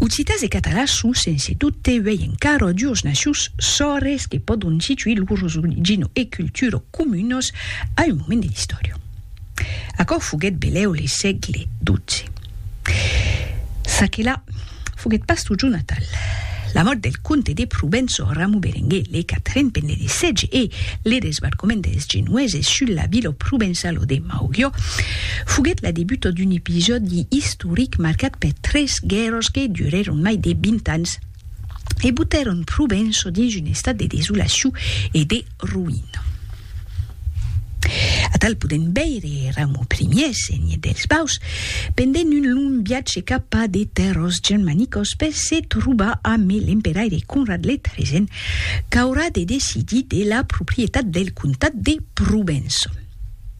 Occitas e catalans son sense dubte uèi encara duos nacions sòrres que pòdon situir lors origina e cultura comunas a un moment de l'istòria. Aquò foguèt belèu le sègle xii. Çaquelà foguèt pas totjorn atal. La mòrt del comte de Provença Ramu Berenguer le Quatren pendent de sètge e le desbarcament dels Genueses sus la vila provençala de Maugiò foguèt la debuta d'un episòdi istoric istoric marcat per tres guèrras que durèron mai de 20 ans e botèron Provenço dins un estat de desolacion e de roïna. Atal podèm veire Raimon Ier, senhor dels Baus, pendent un long viatge cap a de tèrras germanicas per se trobar amb l'emperaire Conrad le Tresen qu'aurà de decidir de la proprietat del comtat de Provenço.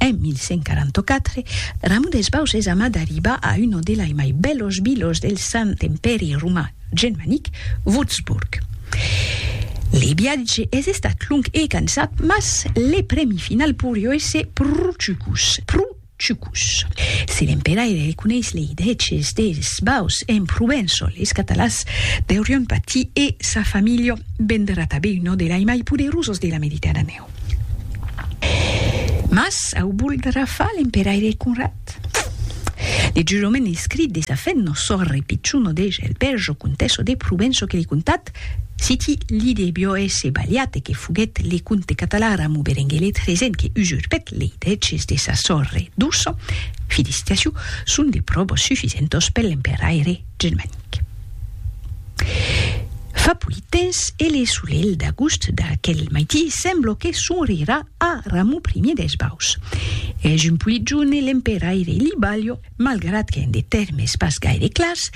En 1144, Ramon des Baus es amat d'arribar a uno delai mai bèlos vilos del Sant Empèri Roman Germanic, Wurzburg. Le viatge es estat long e cansat, mas le prèmi final poirió èsser pro chucus, pro Chucus. Se l'emperaire reconeis lei dreches deis baus en Provenço, leis Catalas deurion patir e sa familha vendrà tabé uno de lai mai poderusos de la Mediterranèu. Mas au voldrà far l'emperaire Conrad? De jurament escrit de sa fèth, nos sòrre pichon Odege el Berjo, comtessa de Provenço que li contat Siti li debió èsser balhat e que foguèt le comte catalan Ramon Berenguelet Resen que usurpèt lei drèches de sa sòrre doço, Filistiaciu, son de pròbos sufisentos per l'emperaire germanic. Fa puèi temps e le solelh d'agost d'aquel maití semblo que sonrirà a Ramon I d'Esbaus. Es un pulit jorn e l'emperaire li balhó. malgrat qu'en de tèrmes pas gaire clars,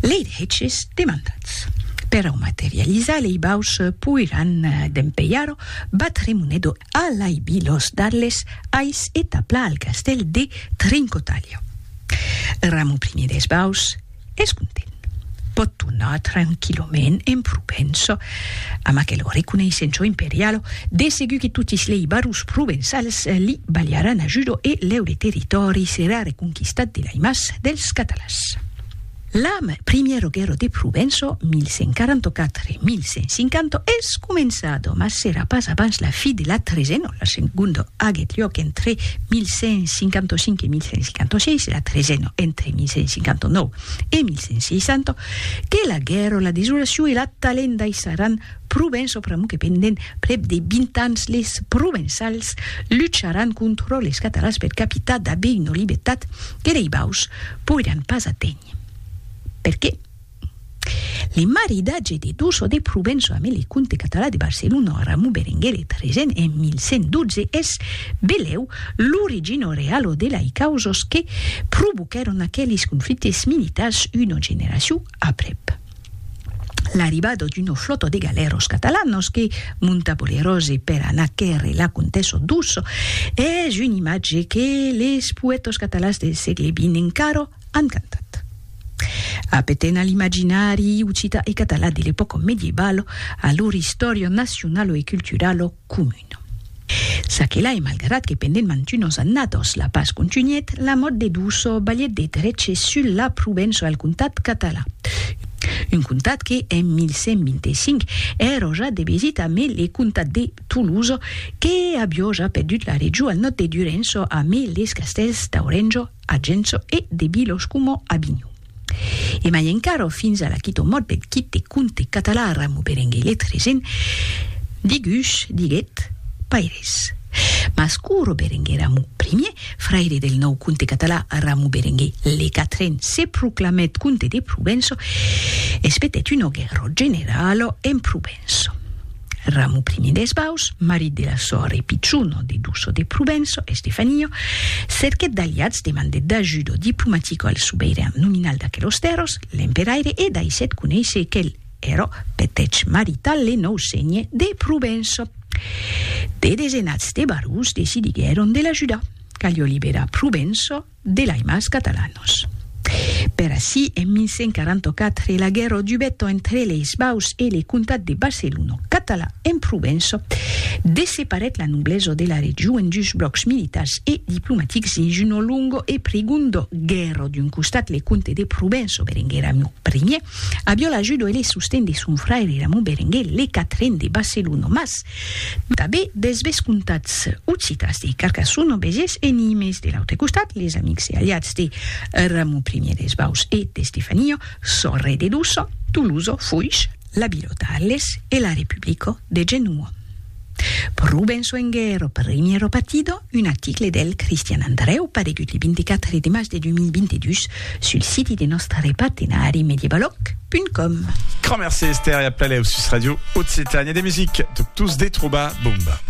lei dreches demandats per au materializar lei baus poiràn dempelhar-o batre Monedo a l'aibi los d'Arles ais e taplar al castèl de Trincotalha. Ramon Primier des Baus, es content. Pòt tornar tranquillament en Provença, amb aquelo reconeissenço imperialo, de segur que totis lei barons provençals li balharàn ajudo e leure territòri serà reconquistat de lei mas dels Catalans. L'am Primiero Guerro de Provenço, 1144-1150, es començado, mas serà pas abans la fi de la Tresenon. La segonda aguèt luòc entre 1155 e 1156, la tresena entre 1159 e 1160, que la guèrra, la desolacion e la talenta aissaràn Provença pr'amor que pendent prèp de 20 ans les Provençals lucharàn contra les Catalans per capitar d'aver una libertat que lei baus poiràn pas aténher. Perqué? Le maridatge de Duso de Provenço ame le comte català de Barcelona Ramon Berenguer le Tresen en 1112 es, belèu, l'origino realo de lai causas que provoquèron aquelis conflictes militars una generacion aprèp. L'arribada d'una flòta de galèros catalanos que monta bolerose per anar quèrre la comtessa Duso es un imatge que les poètas catalans del sègle xx encara Encantat. Apeten a l'imaginari occita e català de l'epòca medievalo, a lor istòria nacionalo e culturalo comuna. Ça que la e malgrat que pendent mantunos annados la pas contunhèt, la mòt de Duso balhèt de dreche sul la Provença e al comtat català, un comtat que, en 1125, èra ja de vesita amé le comtat de Tolosa, que avió ja perdut la region al nòd de Durenço amé les castèls d'Aurenço, a Gencho e de Bilos coma a Binho. E mai encara, fins a l'aquito mòt deth quite conte català Ramo Berenguer le Tresen, digus, diguet, paires. Mas Curo Berenguer Ramo Primier, fraire del nòu conte català Ramo Berenguer le Quatren, se proclamèt conte de Provenço, espetèt un ògue ròt general en Provence. Provenço. Ramu I de Esbaus, marit de la sòr e pichon de Duço de Provenço, Estefanio, cerquèt d'aliats, demandèt d'ajudo diplomatico al subeiran nominal d'aquelos tèrros, l'emperaire, e daissèt conéisser quel ero petèch marital le nòu sénhe de Provenço. De desenats de barons decidiguèron de l'ajudar. Calió liberar Provenço. de l'Aimas Catalanos. Per ací, en 1144, la guèrra dubèt entre leis Baus e le comtat de Barcelona, catalan en Provença, desseparèt la noblesa de la region en dus blòcs militars e diplomatics dins una longa e prigonda guèrra. D'un costat, le comte de Provença, Berenguer Ramon Ier, aviá l'ajuda e le sosten de son fraire Ramon Berenguer le Quatren de Barcelona, mas, Tanben dels vescomtats occitans de Carcassona, Béziers e Nimes. De l'autre costat, les amics e aliats de Ramon Ier des Baus e d'Estefania, Sorre de Doçan, Tolosa, Foix, la vila d'Arles e la Republica de Genoa. Pro ben soenguer o primièra partida, Un article del Cristian Andrèu paregut le 24 de mas de 2022 sul siti de nòstre partenari medievaloc.com. Grand merci Esther e a plaléu sus Radio Occitània de music, tot tous de trobar Bomba.